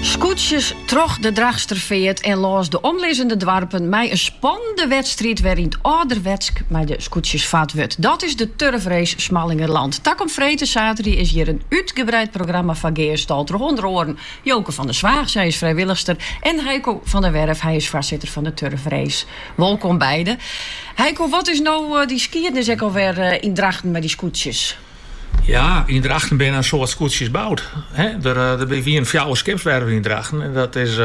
Skûtsjes troch de Drachtsterfeart en lâns de omlizzende doarpen mei in spannende wedstriid wêryn't âlderwetsk mei de skûtsjes fard wurdt. Dat is de Turfrace Smallingerland. Takom freed en saterdei, is hjir in útgebreid programma foar gearstald troch ûnder oaren Joke van der Zwaag, sy is frijwillichster, en Haiko van der Werff, hy is foarsitter fan de Turfrace. Wolkom beide. Haiko, wat is no dy skiednis ek alwer yn Drachten mei dy skûtsjes? Ja, yn Drachten binne in soad skûtsjes boud. Der wienen fjouwer skipswerven yn Drachten en dat is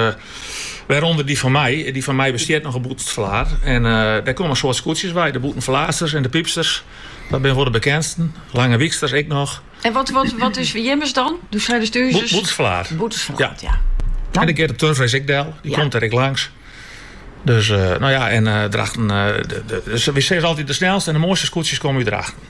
wêrûnder dy fan my. Dy fan my bestiet noch op Bûtenstfallaat. En dêr komme in soad skûtsjes by, de Bûtenstfallaatsters en de Pypsters. Dat binne wol de bekendsten. Langewyksters ek noch. En wat is jimmes dan? Doe seidest ús Bûtenstfallaat. Bûtenstfallaat, ja. En dêr giet de Turfrace ek del, dy komt dêr ek langs. Dus, no ja, en Drachten, wy sizze altyd de snelste en de moaiste skûtsjes komme út Drachten.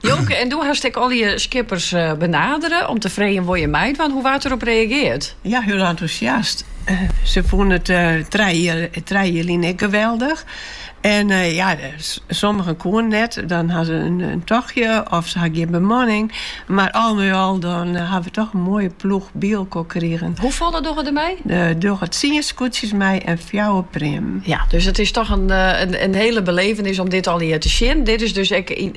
Joke, en doe hast ek allegear skippers benadere om te freegjen wol je meidwaan. Hoe waard derop reageard? Ja, hiel entûsjast. Se fûnen it trije jier, trije jier lyn ek geweldich. En ja, sommigen koenen net, dan ha se in tochtje of se ha gjin bemanning. Mar al mei al dan ha we toch in moaie ploech by elkoar krigen. Hoefolle dogge der mei? Der dogge tsien skûtsjes mei en fjouwer preammen. Ja, dus it is toch in hele belevenis om dit allegear te sjen. Dit is dus ek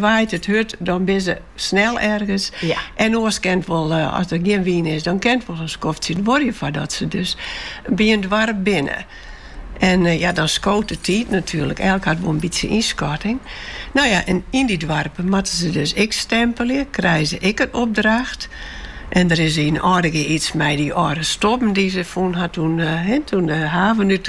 Waait it hurd, dan binne se snel ergens. En oars kin it wol, as der gjin wyn is, dan kin it wol in skoftsje duorje foardat se dus by in doarp binne. En ja, dan skoot de tiid natuerlik. Elk hat wol in bytsje ynskatting. No ja, en yn dy doarpen moatte se dus ek stempelje, krije se ek in opdracht. En der is yn Aldegea iets mei dy âlde stobben dy't se fûn ha, doe't de haven út.